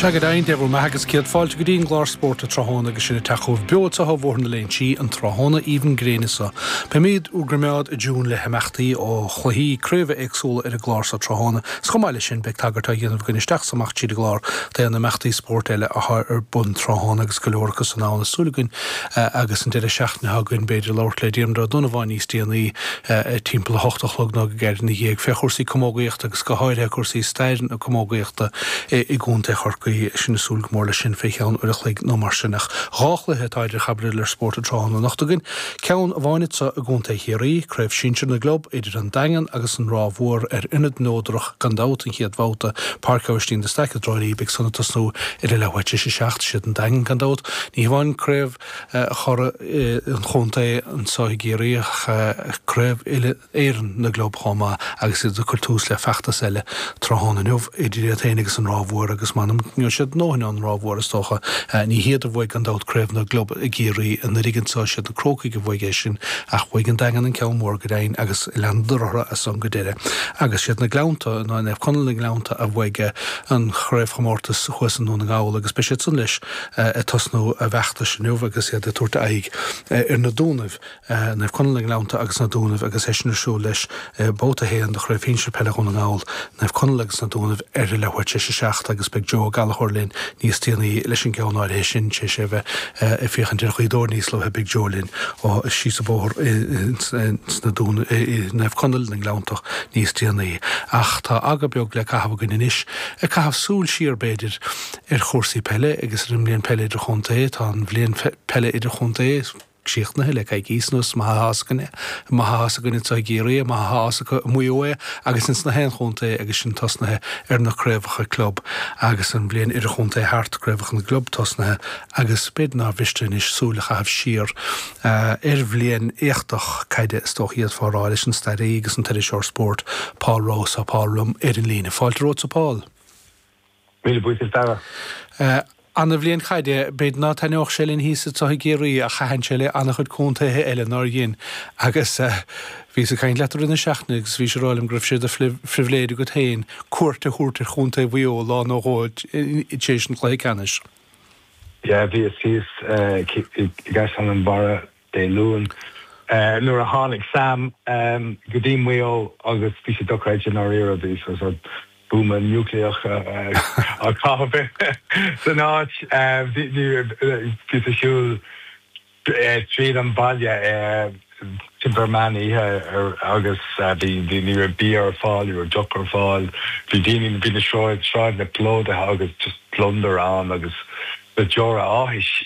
Sea, go deimhin, Dave, go raibh maith agat. Céad fáilte go dtí an gclár Spórt an Tráthnóna agus sinn ag teacht chugaibh beo isteach ó Bhóthar na Léinsí an tráthnóna aoibhinn gréine seo. Beimid bhur gcoimeád i dtiúin le himeachtaí ó chluichí craobha éagsúla ar an gclár so tráthnóna is chomh maith leis sin beidh tagairt á dhéanamh againn isteach is amach tríd an gclár d'aon imeachtaí spóirt eile atá ar bun tráthnóna agus go leor acu san ann, tá súil againn agus an deireadh seachtaine atá againn b'fhéidir labhairt le Diarmuid Ó Donnabháin níos déanaí timpeall a hocht a chlog nó go gairid ina dhiaidh, fé chúrsaí camógaíochta agus go háirithe cúrsaí stair na camógaíochta i gContae Chorcaí. Sinn ag súil go mór leis sin fé cheann uair a chloig nó mar sin. Ach dhá chluiche atá idir chaibidil ar Spórt an tráthnóna anocht againn, ceann amháin anseo i gContae Chiarraí, Craobh Sinsear na gClub idir an Daingean agus an Ráth Mhór ar ionad neodrach gan dabht an chéad bhabhta, Páirc Aibhistín de Staic i dTrá Lí beidh san ag tosnú ar a leathuair tar éis a seacht. 'Siad an Daingean gan dabht, ní hamháin craobh churaidh an chontae anseo i gCiarraí ach Craobh Uile-Éireann na gClub chomh maith agus iad ag cur tús le feachtas eile tráthnóna inniu idir iad féin agus an Ráth Mhór agus m'anam go ngeobhaidh siad a ndóthain ón Ráth Mhór is dócha. Ní hiad a bhuaigh gan dabht Craobh na gClub i gCiarraí anuraidh anseo, is iad na Crócaigh a bhuaigh é sin ach bhuaigh an Daingean an ceann mór go deimhin agus leanadar orthu as san go deireadh agus 'siad na Gleannta, nó Naomh Conaill na nGleannta a bhuaigh an chraobhchomórtas thuas i nDún na nGall agus beidh siad san leis ag tosnú a bhfeachtais inniu agus iad ag tabhairt aghaidh ar na Dúnaibh, Naomh Conaill na nGleannta agus na Dúnaibh agus é sin ar siúl leis Babhta 1 de Chraobh Shinsir Peile Dhún na nGall, Naomh Conaill agus na Dúnaibh ar a leathuair tar éis a seacht agus beidh Joe Ó Gallachóir linn níos déanaí leis an gceann áirithe sin, tar éis a bheith ag féachaint ar Ghaoth Dobhair níos luaithe beidh Joe linn ó síos an bóthar ins na Dúnaibh i Naomh Conaill na nGleanntach níos déanaí. Ach tá aga beag le caitheamh againn anois, ag caitheamh súil siar b'fhéidir, ar chúrsaí peile agus ar an mbliain peile idirchontae. Tá an bhliain peile idirchontae críochnaithe le coicís anuas. Is maith atá a fhios againn é. Is maith atá a fhios againn anseo i gCiarraí é. Is maith atá a fhios acu i Maigh Eo é agus ins na haon chontae é agus sinn tosnaithe ar na craobhacha club agus an bhliain idirchontae thart, craobhacha na gclub tosnaithe agus b'fhéidir nár mhiste anois súil a chaitheamh siar ar bhliain éachtach caide is dócha a d'fhéadfá a rá leis an staraí agus an t-iriseoir spóirt Paul Rouse. Tá Paul liom ar an líne. Fáilte romhatsa Paul. Míle buíochas a Dara. Eh ana-bhliain caide b'fhéidir ná taitneoidh sé linn thíos anso i gCiarraí ach thaitin sé le ana-chuid contaetha eile nár dhein agus eh bhíos ag caint leat i rith na seachtaine agus bhís ag rá liom go raibh sé de phribhléid agat féin cuairt a thabhairt ar chontae Mhaigh Eo lá nó dhó tar éis an chluiche ceannais. Yeah bhíos thíos eh i gCaisleán an Bharraigh. Dé Luain, nuair a tháinig Sam go dtí Maigh Eo agus bhí sé dochreidte i ndáiríre, bhí sé buama núicléach a caitheadh san áit, bhíos ag siúl tríd an bhaile timpeall meán oíche agus ní raibh bia ar fáil, ní raibh deoch ar fáil. Bhí daoine, bhí na sráideanna plódaithe agus just gliondar ann agus na deora áthais.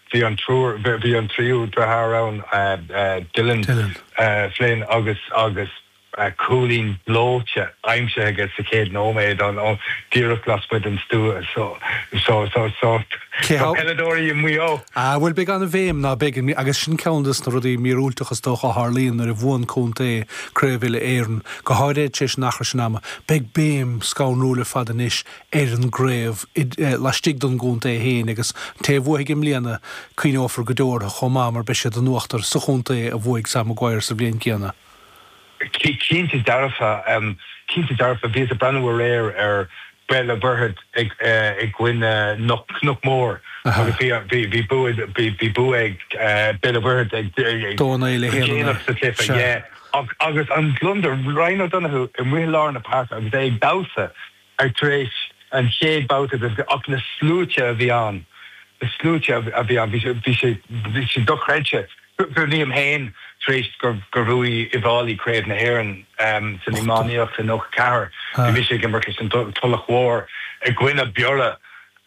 Bhí an triúr, bhí an tríú deartháir ann, Dylan, Dylan. Flynn agus agus cúilín gleoite aimsithe aige sa chéad nóiméad, díreach lasmuigh den stua. So so so Cé so peileadóirí i Maigh Eo. Ah, bhuel, beidh an-bhéim, ná beidh, agus sin ceann de na rudaí míorúilteacha is dócha a tharlaíonn nuair a bhuann contae Craobh Uile-Éireann, go háirithe tar éis an achar sin ama. Beidh béim scanrúil ar fad anois ar an gcraobh laistigh den gcontae féin agus an té a bhuafaidh i mbliana, cuimhneofar go deo orthu chomh maith mar beidh siad in uachtar sa chontae a bhuaigh Sam Maguire sa bhliain céanna. Cinnte dearfa, cinnte dearfa. Bhíos ag breathnú aréir ar Béal an Mhuirthead i gcoinne Chnoc Mór agus bhí bua, bhí bua ag Béal an Mhuirthead go déanach sa chluiche, yeah. Agus an gliondar, Ryan O'Donoghue amuigh i lár na páirce agus é ag damhsa. ach tar éis an chéad babhta de ach na sluaite a bhí ann, na sluaite a bhí ann, bhí sé, bhí sé, bhí sé dochreidte. Cuimhin liom féin, tar éis gur bhuaigh Uíbh Fhailí Craobh na hÉireann san iománaíocht i 94, bhí mise ag imirt leis an Tulach Mhór i gcoinne Biorra,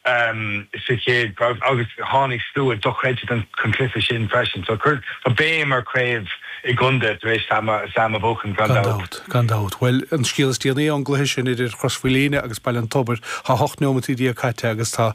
sa chéad craobh agus tháinig slua dochreidte chun cluiche sin freisin. So tá béim ar chraobh i gcontae tar éis Sam a bhuachan, gan dabht. Gan dabht. Bhuel, an scéal is déanaí ón gcluiche sin idir Chrois Mhaoilíona agus Baile an Tobair, tá hocht neomataí déag caite agus tá.